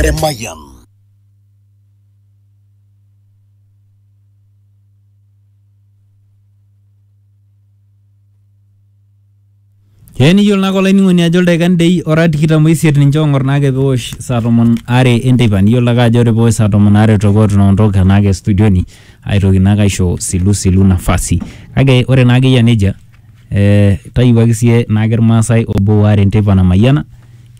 Emayian. Ee niyiolo naa olainining'oni ajo ildaikani dei ora tikitam oisiet ninche oong'or naake peosh saa tomon are enteipa niyiolo ake ajo ore peosh saa tomon are tokotu naondoka anaake studioni aitoki naake aisho silusilu nafasi kake ore naa ake eyia nejia eh, tayiwuaki sie naake irmaasai obo waare nteipa namayiana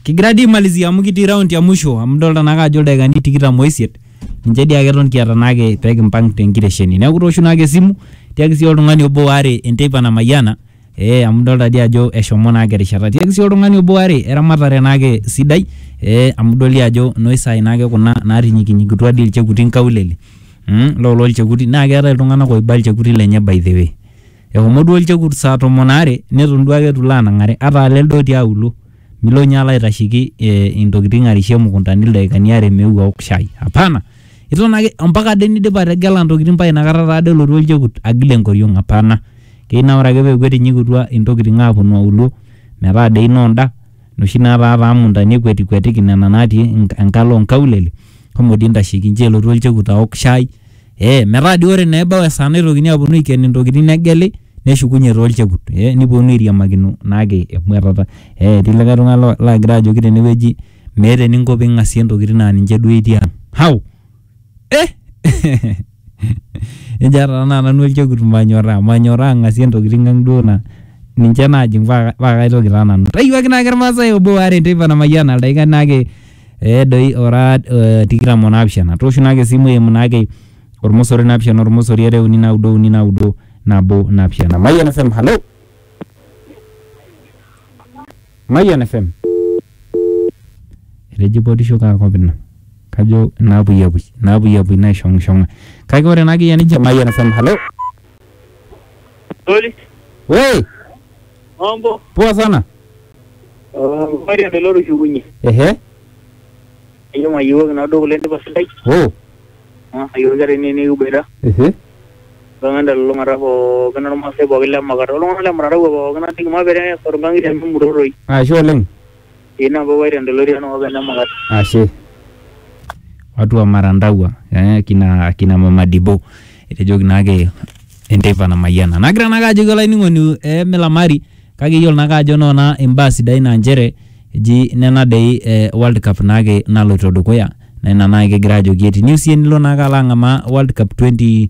kigira dii aimalizia amu kitii raundi ya musho amu dolta naake ajo ildaikani tikitam oisiet ninche dii ake eton kiata naake pekimpang tenkitesheni neeku tooshu naake esimu tiaki sii oltung'ani obo waare enteipa namayiana eh, amu dolta dii ajo eshomo naake erishata tiaki sii oltung'ani obo waare eramatare naake sidai eh, amu idoli ajo noisai naake kuna natinyikinyikitua dii ilchekuti nkaulele mm, lolo ilchekuti naa keetae iltung'anak oiba ilchekuti lenye by the way Ehomo duo olchekut saa tomon aare neton duo ake eitu ilo anang'are ata aa lelde otii aulo. Milo ninye alo aitashiki intokitin arishie imukuntani ildaikani aare meeu aok shai. Hapana! Iton ake ompaka ade nidip ategela intokitin paa ina kata taa ade elotu olchekut agil enkoriong. Hapana! Keyieu naa ore ake peeku etinyikitua intokitin aaponu aulo metaa dei noonda noshi naataa taa muntani ekwetikwetiki nena naatii enkalo oo nkaulele shomo dii intashiki nchoo elotu olchekut aok shai Eh, metaa dii ore naa ebau esaa naitokini aponu aiken intokiting negeli, neshukunye taa olchekut. Eh niponu airiamakino naake emuatata. Eh etii likae tung'ani lagira ajoki tenewueji meeta eninko ping'asie intokiting na ninche duo etii ang'. Hau! Eh! Ejo ata tenaa nanu olchekut manyorraa. Manyorraa ang'asie intokiting ang' duo na ninche najing' pa kaitoki taa nanu. Etayiewuaki naake irmaasai obo waare teipa namayiana ildaikan naake ee doi ora eh, tikitam o naapishana tooshu naake esimu eimu naake ormosori naapishana ormosori are uni naudo uni naudo nabo naapishana Mayian FM halo Mayian FM etejipotisho kaa kop ina kajo inaapuyiapui inaapuyiapui naishong'ishong'a kake ore naake iyie ninche Mayian FM halo Oli, Wei, mambo. poa sana. Ore entoki otushukunye. Ehe. Ajo mayiewuaki nado kule ndipa sidai. Oh. Ayiewuaki ata ene nikiboita. Ehe. Mpaka entelulung'ata pookin ormaasai pookin le Makata. Oltung'anak le Mutaraua pookin ajoki mapere esotu nkang'itie amu emuroroi. Ashe oleng. Ina boboita entolori enakop ene Mukat. Ashe. Watu wa Marandagua eh, akina, akina Mama Dibo etejoki naake enteipa namayiana. Nagira naake ajoki olainining'oni eh, milamari kake iyiolo naake ajo noona imbaa sidain aa nchere eji nena dei eh, World Cup naake naloito dukuya naa ina naake kigira ajoki etiniu siyie nilo naake alo ang'amaa World Cup 20